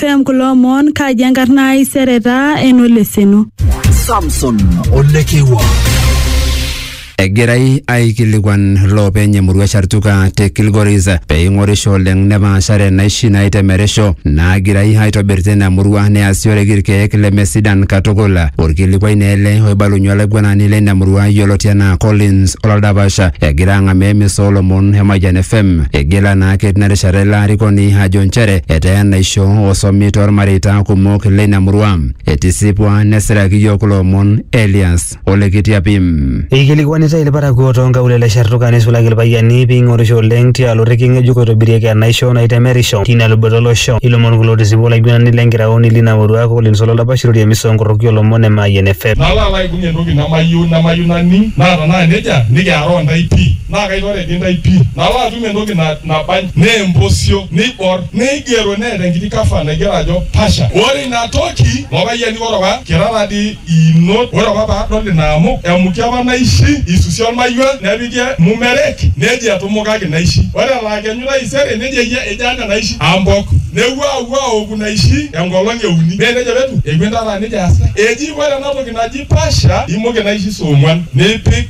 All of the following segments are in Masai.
FM kulo omon kaji enkarna ai sereta enoleseno. Samson Olekewa. egirai aikilikuan loopeny emurua Shartuka te Kilgoris pee ing'orisho oleng nepaashare naishi naitemerisho naagirai aitobir tina murua neasioreki irkeek lemesidan katukul. Orkilikuai naa ele oibalunye olaiguanani leina murua yioloti anaa Collins Olaldapasha egira ang'amaa emisa oolomon e Mayian FM. Igila naake tina rishata ilo arikoni ajo nchere etaa enaisho osomi toolmareita kumok leina murua. Etisipua nesiraki iyiook kulo omon Elias ole Kitiapim. Eikilikuanitai ilparakuo too nkaulele e Shartuka neisulaki ilpayiani pee eing'orisho oleng tialo orrekie ng'ejuk oitobirieki enaisho naitemerisho teina luboto o losho. Ilomon kulo otisipua olaiguanani le nkiraoni leina murua Collins Ololdapash Iroria emisa oo nkoroki oo lomon e Mayian FM. Nalo alo aibung entoki nemayieu nemayieu naning naa tenaa nejia nikiaroo intae pii naa kaitore dii intae pii. Nalo atum entoki na. Nabany neempusio neibor neigero neeta enkiti cover naigero ajo Pasha. Ore ina toki lopayiani ore apa kira taadii iinot ore apa paadol ina amuk emuki apa naishi eisusi olmayiua nepiki mumerek neji etumukaki naishi. Ore elaa kenyu taisere neji eyia ejo anya naishi ambok. Nepuo aapuo aoku naishi enkolong e uni. Mee neija apa etiu? Epuo intare aa neija easita. Eji ore ena toki naji Pasha imuki naishi saa ong'uan nipik.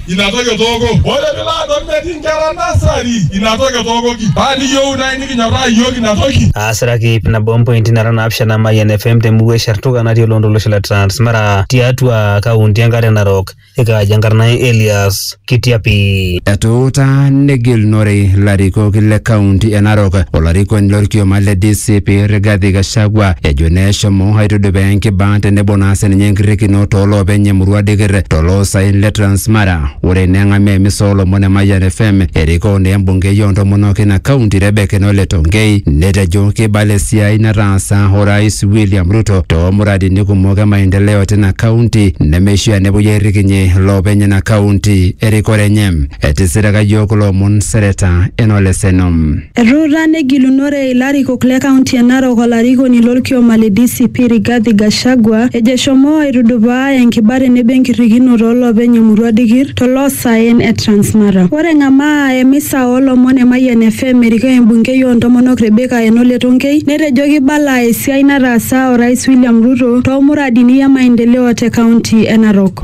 ina toki etooko. Ore pilo adol metii nkera nasari, ina toki etookoki. Paa niyieu nai nikinyorraa iyiook ina toki. Aasiraki ip nabo ompointi nara naapishana Mayian FM temurua e Shartuka natii oloontoluo lolosho le Transmara tiatua kaunti enkare Narok. Ekaaji enkarna ai Elias Kitiapi. Etuutaa negilunore larikok le kaunti e Narok olarikoni lorkioma le DCP Rigathi Gachagua ejo neshomo aitudupaa enkibaa tenebo naa sininye enkirrikino tooloopeny emurua Dikir tolo saen le Transmara. Ore eneng'amaa emisa oolomon e Mayian FM erikoo naa embungei oo ntomonok ina kaunti Rebecca Enole Tonkei netejo keibala esiai nataasa Orais William Ruto too muradini kumok e maendeleo tina kaunti nemeishaa nepuoi airrikinyie loopeny ina kaunti erikore enye. Etisiraka iyiook kulo omon Seneta Enole Seno. Etuuta negilunore ilarikok le kaunti e Narok olarikoni lo lkioma le DCP Rigathi Gachagua ejo eshomo aitudupaa enkiba tenebo enkirrikinoto o loopeny emurua Dikir to loo saen e Transmara. Ore eng'amaa emisa oo lomon e Mayian FM erikoo embungei oo ntomonok Rebecca Enole Tonkei netejo keibala esiai nataasa Orais William Ruto too muradini e maendeleo te kaunti e Narok.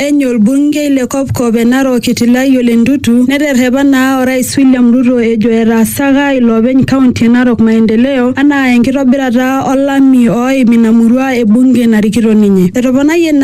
Eny olbungei le kopkop e Narok Itilai Ole Ntutu neterrepa naa Orais William Ruto ejo etaasaka iloopeny kaunti e Narok maendeleo anaa enkitobirata olami ooim ina murua e bunge narikito ninye. Etoponayie naa